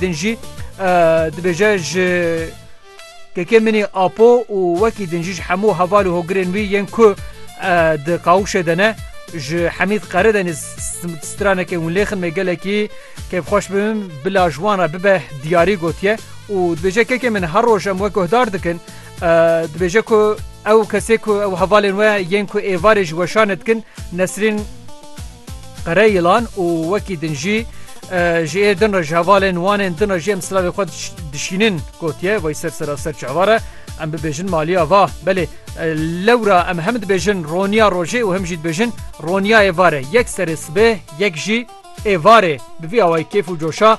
Din jî dibêje ji kekê min ê Apo û wekî din jî ji hemû heval û hogirên wî yên ku di qawûşê de ne ji Hemîd Qere de nêz stranekê hûn lêxin me gelekî kêfxweş bibim bila ji wan re bibe diyarî gotiye û dibêje kekê min her roj em we guhdar dikin dibêje ku ew kesê ku ew hevalên we yên ku êvarê ji weşanê dikin Nesrîn Qere yılan û wekî din jî ji ê din re ji hevalên wanên din re jî em silavê xwe dişînin gotiye vay ser sera ser çavar e em bibêjin maliya va belê lewra em hem dibêjin roniya rojê û hem jî dibêjin roniyayê vare yek serê sibê yek jî ê varê bi vî awayî kêf û coşa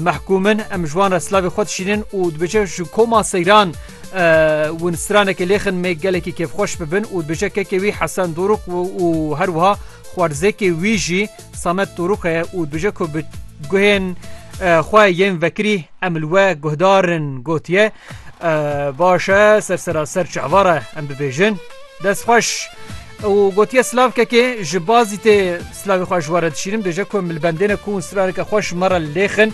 Mehkûm in em ji wan re silavê xwe dişînin û dibêje ji koma seyran win stranekê lêxin mê gelekî kêfxweş bibin û dibêje kekê wî Hesen Dorûk û her wiha xwarzêkê wî jî Samet Dorûk heye û dibêje ku bi guhên xwe yên vekirî em li we guhdar in gotiye baş e ser seraser çi hevara em bibêjin destxweş. û gotiye slavkekê ji bazî tê slavê xwe ji we re dişîrim dêje ku milbendêne ku straneke xwe ji me re lêxin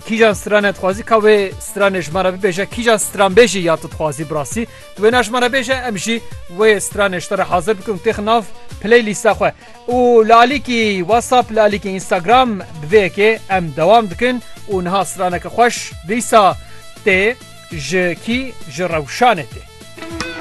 kîjan strane dixwazî ka wê stranê ji me re bibêje kîjan stranbêjî ya tu dixwazî birasî tu wê na ji me re bêje em jî wê stranê ji te re hazir bikin têx nav play lîsta xwe û li alîkî whatsapp li alîkî instagram bi vê yekê em dewam dikin û niha straneke xweş dîsa tê ji kî ji rewşanê tê